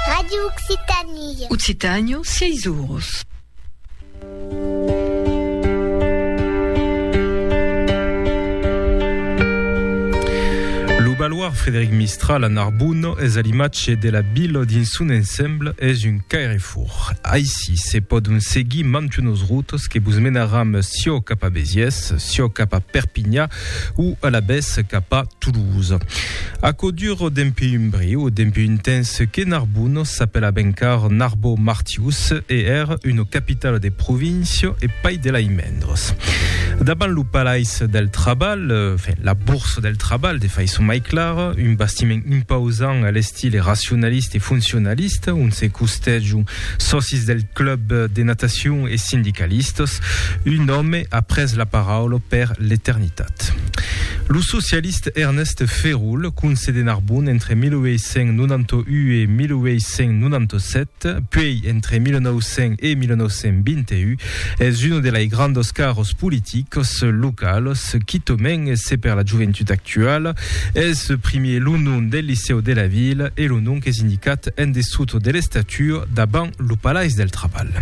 Radio Occitanie. Occitània, sièis oros. Lo baloir Frédéric Mistral a Narbonne es a l'imatge de la vila dins son ensemble es un cairefòr. Aicí se pòdon seguir mantunos routes que vos menaram siò cap a Béziers, siò cap a Perpinha, o alavetz cap a Toulouse. Aquò dure dempuèi un briu, dempuèi un temps que Narbonne s'apelava encara Narbo Martius e ère una capitala de província e pas de lai mendres. Davant lo Palais del Trabalh, enfin, la Bourse del Trabalh de faiçon mai clara, un bastiment impausant a l'estil racionaliste e foncionaliste, ont se costèjon Sòcis del club de natacion e sindicalistas, un òme a pres la paraula per l'eternitat. Lo socialist Ernest Ferul, conse de Narbon entre 1891 e 1897, puèi entre 1900 e 1921, Es un de lei grandos caros politicos localos quitomen e se per la joventut actuala es primier lo nom del licèu de la vila e lo nom qu'es indicat en dessut de l'estatua davant lo Palais del Trabalh.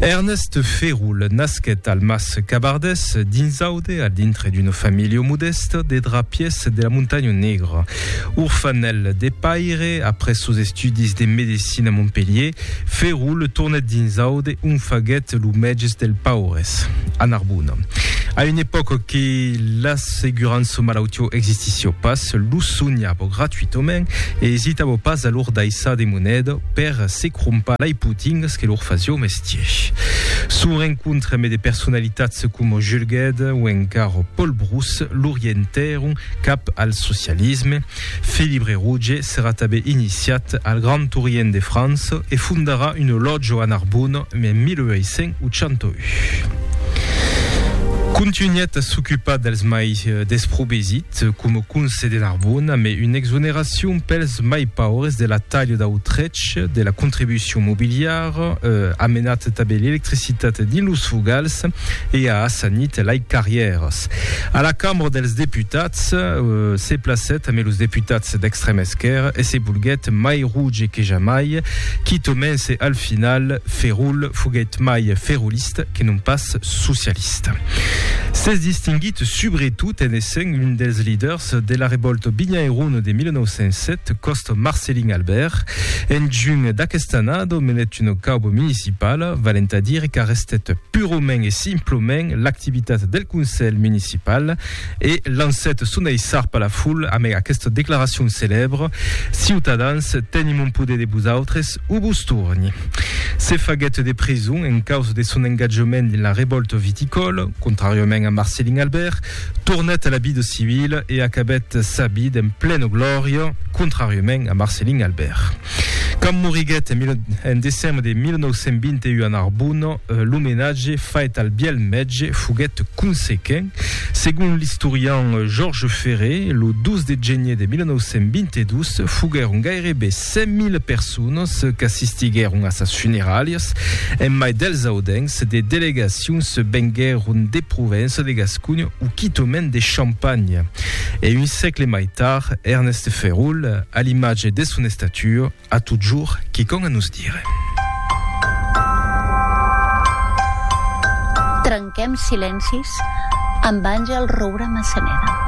Ernest Ferul nasquèt al Mas Cabardès, dins Aude, al dintre d'una familha modèsta de drapiers de la Montanha Negra. Orfanèl de paire, après sos estudis de medecina a Montpelhier, Ferul tornèt dins Aude, ont faguèt lo mèges dels paures, a Narbona. A una epòca que l'assegurança malautiá existissiá pas, lo sonhava gratuitament e esitava pas a lor daissar de moneda per se crompar lai potingas que lor fasió mestier. Son rencontre ambe de personalitats coma Jules Guesde o encara Paul Brousse l'orientèron cap al socialisme, Felibre Rouge serà tanben iniciat al Grand Tourien de França e fondarà un olòtjo a Narbona en 1881. Contunhèt a s'ocupar dels mai desprovesit coma conse de Narbona mai una exoneracion pels mai paures de la talha dau trech de la contribucion mobiliara, amenat tanben l'electricitat dins los fogals e a assanit lai carrièras. A la Cambra dels Deputats, se placèt amé los deputats d'extrèm esquèrra e se bolguèt mai roge que jamai, quitomen se al final Ferrul foguèt mai ferrulista que non pas socialista. S'es distinguit subretot en essent un dels liders de la revòlta binhairona de 1907 còsta Marcelin Albèrt. En junh d'aquesta annada menèt una cauba municipala, valent a dire qu'arrestèt Purament e simplament l'activitat del Conselh Municipal e lancèt son aissar per la foul amèg aquesta declaracion celèbre, Ciutadans, tenim un poder de vosautres o vos torni. Se faguèt de prison en causa de son engatjament dins la revòlta viticòla, contràriament a Marcelin Albert, Tornèt a la vida civila e acabèt sa vida en plena glòria, contràriament a Marcellin Albèrt. Quand moriguèt en decembre de 1921 a Narbona, l'omenatge fait al bièlh mètge foguèt consequent. Segon l'istorian Georges Ferré, lo 2 de genier de 1922 foguèron gairebe Cent mil personas qu'assistiguèron a sas funeralhas, en mai dels audencs, de delegacions venguèron de Provença, de Gasconha o quitament de Champanha. E un sègle mai tard, Ernest Ferrul, a l'imatge de son estatua, a totjorn quicòm a nos dire. Trenquem silencis amb Àngel Roura Massaneda.